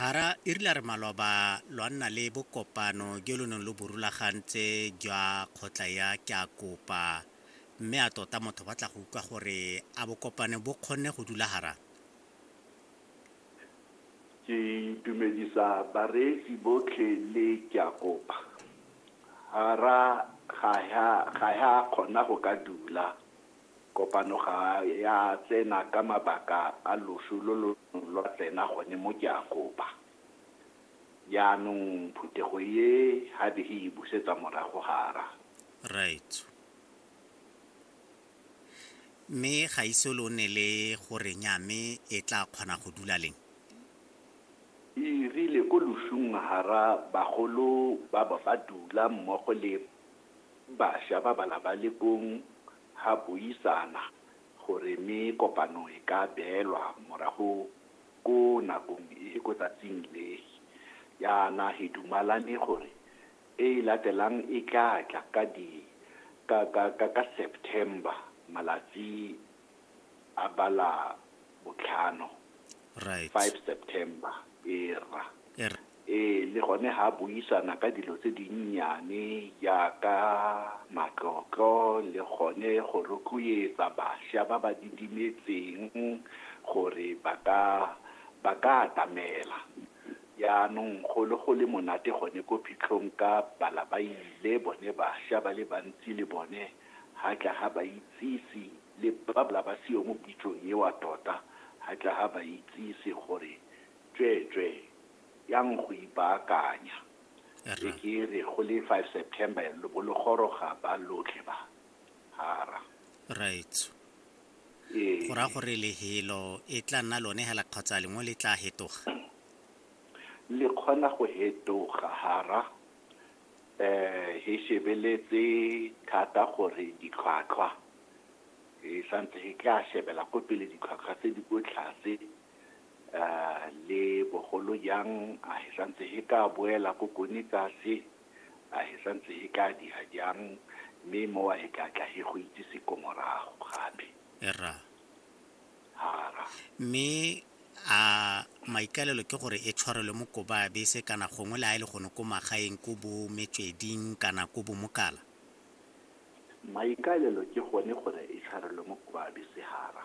Hara e rile a re maloba lwa nna le bokopano jo lo neng lo bo rulagantse jwa kgotla ya Ke a Kopa mme a tota motho ba tla go utlwa gore a bokopano bo kgonne go dula hara Ke itumedisa bareetsi botlhe le Ke a Kopa hara ga ya kgona go ka dula. Kopano ga ya tsena ka mabaka a loso lo lo neng lwa tsena gone mo Keakopa. Jaanong phuthego e ga be e e busetsa morago gara. Raetsho. Mme ga ise lo nne le go re nya mme e tlaa kgona go dula leng? E rile ko losong gara bagolo ba bo ba dula mmogo le Basha ba ba labalekong ha buisana gore me kopano e ka beelwa morago ko nakong e ko tsatsing le. Yana he dumalane gore e e latelang e tla tla ka di ka ka ka ka September malatsi a ba la botlhano right five september era Er- ee le gone ga a buisana ka dilo tse dinnyane jaaka matlotlo le gone go rotloetsa bašwa ba ba didimetseng gore ba ka ba ka atamela jaanong go le go le monate gone ko phitlhong ka bala ba ile bone bašwa ba le bantsi le bone ha tla ha baitsisi le babla ba seo mo pitsong ewa tota, ha tla ha baitsisi gore tsweetswee yang go ipaakanya. E ke re go le five September lo bo lo goroga ba lotlhe ba, hara. Raetsho. Ee. Go raya gore lehelo e tla nna lone hela kgotsa lengwe le tla hetoga? Le kgona go hetoga, hara. he shebeletse thata gore ditlhwatlhwa he santse he tla shebela ko pele ditlhwatlhwa tse di ko tlase le bogolo jang a he santse he ka boela ko kone tlase a he santse he tla dira jang mme mowa he tla tla he go itsise ko morago gape hara. Mme a maikalelo ke gore e tshwarelwe mo Kobabese kana gongwe le ha e le gone ko magaeng ko bo Metsweding kana ko bo Mokala? Maikalelo ke gone gore e tshwarelwe mo Kobabese hara.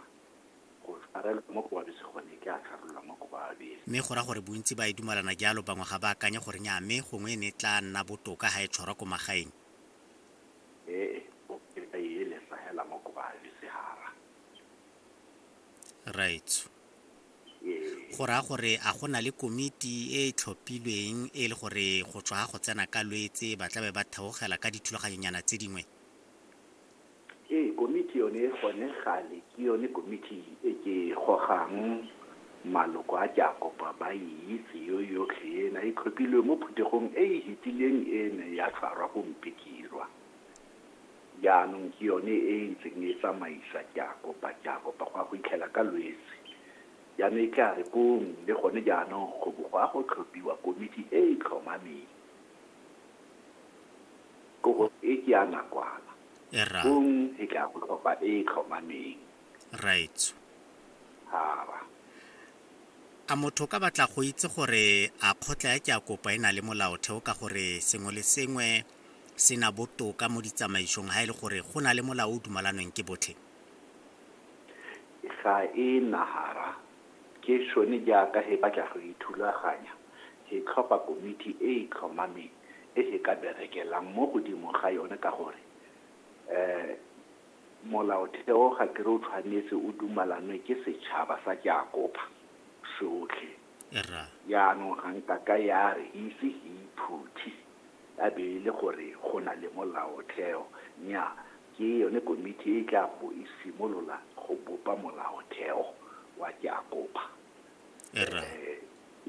Go tshwarelwa mo Kobabese gone ke a tshwarelwa mo Kobabese. Mme go raya gore bontsi ba e dumalana jalo, bangwe ga ba akanye gore nnyaa mme gongwe e ne e tlaa nna botoka ha e tshwarwa ko magaeng? Ee, bope ba e elesa hela mo Kobabese hara. right go raya gore a go na le komiti e e tlhophilweng e le gore go tswa go tsena ka lwetse ba tla be ba theogela ka dithulaganyonyana tse dingwe ee komiti yone gone gale ke yone komiti e ke gogang maloko a ke a kopa ba e itse yo yotlhe ena e tlhophilwe mo phuthegong e e hetileng ene ya tshwarwa go mpekirwa Jaanong ke yone e e ntseng e tsamaisa Jakopa, Jakopa, go ya go itlhela ka Lwetse. Jaanong e tla re pong, le gone jaanong go bo go ya go tlhophiwa komiti e e tlhomameng. Kobo e ke ya nakwana. Erra. Pong e tla go tlhopha e e tlhomameng. Raetsho. Hara. A motho o ka batla go itse gore a kgotla ya Jakopa e na le molaotheo ka gore sengwe le sengwe se na botoka mo ditsamaisong ha e le gore go na le molao o dumalanweng ke botlhe? Ga e na hara. Ke sone jaaka he batla go ithulaganya, he tlhopha komiti e e tlhomameng e he ka berekelang mo godimo ga yone ka gore Molaotheo ga ke re o tshwanetse o dumalanwe ke setšhaba sa Jakoba sotlhe. Jaanong ga nka ka ya re, ise he iphuthi. a be e le gore go na le molaotheo, nnyaa, ke yone komiti e e tla bo e simolola go bopa molaotheo wa Ke a Kopa. Rra.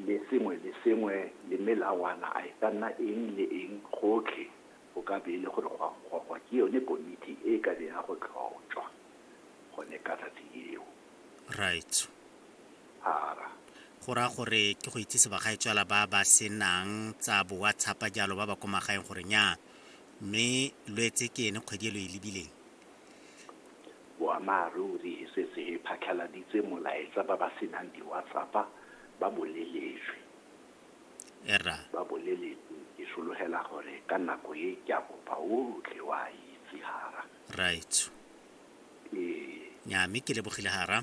Le sengwe le sengwe le melawana, a e ka nna eng le eng, gotlhe go ka be e le gore go a gogwa ke yone komiti e e ka be ya go tlhotšwa gone ka tsatsi leo. right ara go raya gore ke go itsise bagaetswala ba ba senang tsa bo whatsapp jalo ba ba ko magaeng gore nya mme lwetse ke ene kgwedi e lo e lebileng boammaaruri e setse e phatlhaladitse molaetsa ba ba senang di-whatsappa ba boleletswe era ba boleletswe ke sologela gore ka nako e ke a kopa otlhe wa itse gara right ee nya mme ke lebogile ga ra